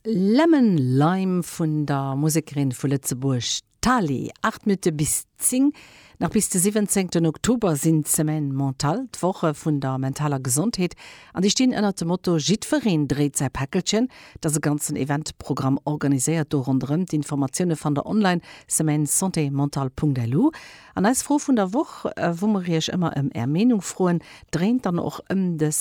Lemon Lime vun der Musekerin vu Lëtzebuerg Tali. 8 Minutte bis 10. Nach bis de 17. Oktober sinn d'Semaine Mentale, d'Woche vun der mentaler Gesondheet, an déi stinn ënnert dem Motto Jiddwereen dréit säi Päckelchen. Et ass e ganzen Eventprogramm organiséiert do ronderëm. D'Informatioune fannt der online, semaine-santé-mentale.lu. An eis Fro vun der Woch, wou mer Iech ëmmer ëm Är Meenung froen, dréint dann och ëm dës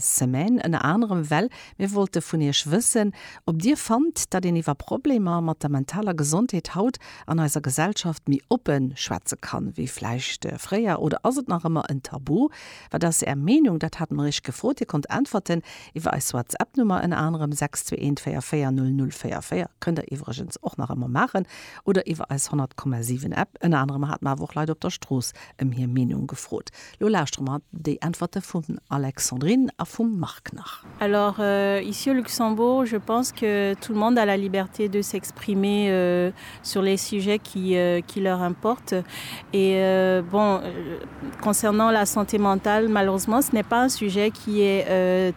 Semaine, ënner anerem well mir wollte vun Iech wëssen, ob Dir fannt, datt een iwwer Problemer mat der mentaler Gesondheet haut an eiser Gesellschaft méi oppe schwätze kann, wéi vläicht fréier. Oder ass et nach ëmmer en Tabu? Wat ass Är Meenung? Dat hate mer Iech gefrot. Dir konnt äntwerten iwwer eis WhatsApp-Nummer, ënner anerem 621 44 0 0 44, kënnt Der iwwregens och nach ëmmer maachen, oder iwwer eis 100,7 App. Ënner anerem hate mer awer och Leit op der Strooss ëm hir Meenung gefrot. Lo lauschtere mer déi Äntwerte vum Alexandrine a vum Marc nach. Alors, ici au Luxembourg, je pense que tout le monde a la liberté de s'exprimer sur les sujets qui qui leur importent et bon, concernant la santé mentale, malheureusement, ce n'est pas un sujet qui est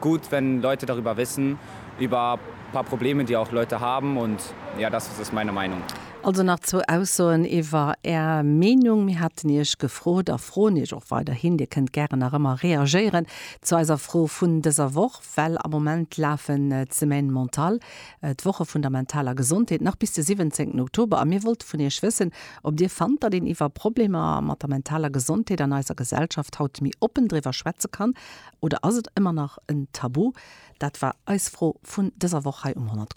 Gut wenn Leute darüber wissen über paar Probleme die auch Leute haben und ja das ist es meine Meinung. Also nach zwou Aussoen iwwer Är Meenung. Mir haten Iech gefrot a froen Iech och weiderhin, Dir kënnt gären nach ëmmer reagéieren zu eiser Fro vun dëser Woch, well am Moment lafen d'Semaine mentale, d'Woche vun der mentaler Gesondheet, nach bis de 17 Oktober a mir wollte vun Iech wëssen, ob Dir fannt, datt een iwwer Problemer mat der mentaler Gesondheet an eiser Gesellschaft haut méi oppen driwwer schwätze kann Oder ass et ëmmer nach en Tabu? Dat war eis Fro vun dëser Woch hei um 100.